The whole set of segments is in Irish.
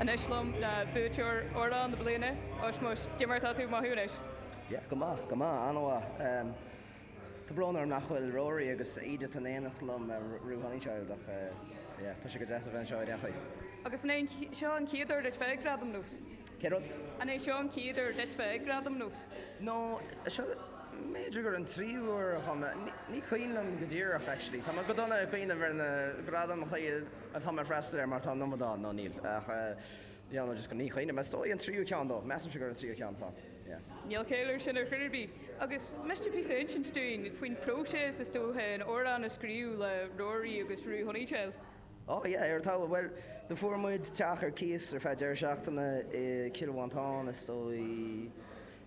Anois liom ná buaiteoir Amhrán na Bliana, Ushmush, cad é mar atá tú ag mothú anois. Yeah, go maith, go maith, an-mhaith. Tá brón orm nach bhfuil Rory agus Edith in éineacht liom or Roo Honeychild ach yeah, tá sé go deas a bheith anseo i Reachraidh. Agus an é seo an chéad uair duit bheith ag Gradaim NÓS? Cén rud? An é seo an chéad uair duit bheith ag Gradaim NÓS? No, seo, b'fhéidir gur an tríú huair a chuaigh mé. Ní cuimhin liom go díreach, actually. Tá mé go dona ag cuimhneamh ar na gradaim a chuaigh mé ag freastal air mar tá an iomad ann, nó níl, ach yeah, nó just ní chuimhním. Is dóigh an tríú ceann dó, measaimse gur an tríú ceann atá, yeah. Níl caill air sin ar chor ar bith. Agus miste píosa a insint dúinn faoin próiseas, is dócha, an amhrán a scríobh le Rory agus Roo Honeychild? Oh yeah, ar talamh. Bhuel, do fuair muid teach ar cíos ar feadh deireadh seachtaine i Cill Mhantáin, is dóigh,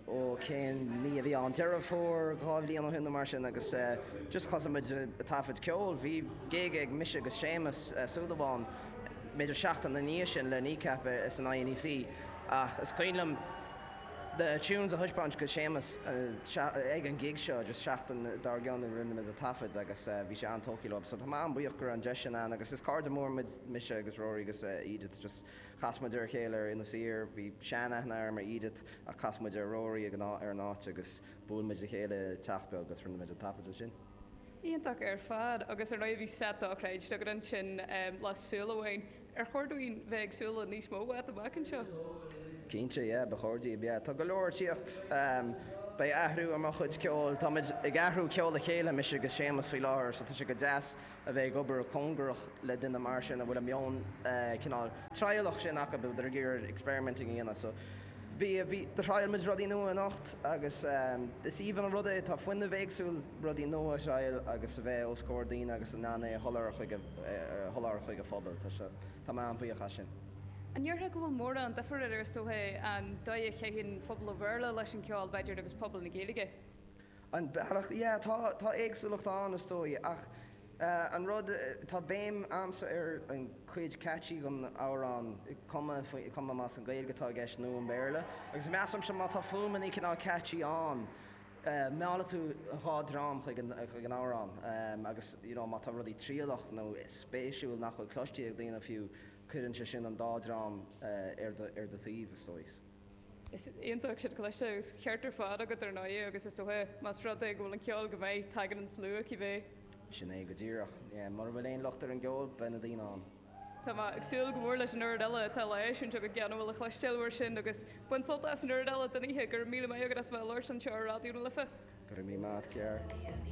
ó cén mí a bhí ann, Deireadh Fómhair dhá bhliain ó shin nó mar sin agus eh just thosaigh muid a' taifead ceoil, bhí gig ag mise agus Séamus Ó Súilleabháin b'fhéidir seachtain ina dhiaidh sin le Kneecap eh san INEC ach is cuimhin liom na tunes a thaispeáint go Séamus ag an gig seo agus seachtain dár gcionn rinne muid a taifead agus bhí sé an-tógtha leo so tá mé an-buíoch go raibh an deis sin ann agus is cairde mór muid mise agus Rory agus Edith just chas muid ar a chéile ar Inis Oírr bhí sean-aithne agam ar Edith ach chas muid ar Rory ag an áit agus bhuail muid le chéile i teach beag agus rinne muid an taifead ansin. Iontach ar fad, agus ar ndóigh bhí slot dochreidte agat ansin le Súil Amháin. Ar chóir dúinn bheith ag súil le níos mó uait amach anseo? Cinnte, yeah, ba chóir daoibh, yeah. Tá go leor ag tíocht. Beidh athrú ar mo chuid ceoil, tá muid ag athrú ceol le chéile, mise agus Séamus faoi láthair, so tá sé go deas a bheith ag obair cóngarach le duine mar sin a bhfuil an meon cineál trialach sin acu, a bheith ag iarraidh experimenting a dhéanamh, so. Bhí, bhí, do thriail muid rudaí nua anocht agus is aoibhinn an rud é, tá fuinneamh éagsúil, rudaí nua a thriail agus a bheith os comhair daoine agus in ann é a sholáthar chuig a, a sholáthar chuig an phobail. Tá sé, tá mé an-bhuíoch as sin. An ndéarfá go bhfuil mórán duifir idir, is dócha, an dóigh a chaitheann pobal an Bhéarla leis an gceol, b'fhéidir, agus pobal na Gaeilge? An bealach, yeah, tá, tá éagsúlacht ann, is dóigh, ach. An rud, tá béim a'msa ar an cuid catchy gon amhrán, cuma, cuma más an Gaeilge atá i gceist nó an Béarla. Agus measaimse má tá fuaimeannaí cineál catchy ann, meallfaidh tú an dhá dream chuig an amhrán. Agus you know má tá rudaí trialach nó spéisiúil nach bhfuil cloiste ag daoine fiú, cuireann sé sin an dá dream ar do taobh, is dóigh. Is iontach sin cliste, agus ceart ar fad agat ar ndóigh, agus is dócha más rud é go bhfuil an ceol go maith, tagann an slua, cibé. Sin é go díreach. Mura bhfuil aon locht ar an gceol, beidh na daoine ann. Tá mé ag súil go mór leis an oiread eile atá le heisiúint agat, gan a bhfuil le cloisteáil uair sin, agus bain sult as an oiread eile den oíche. Go raibh míle maith agat as bheith ag labhairt anseo ar Raidió na Life. Go raibh míle maith agat, a chara.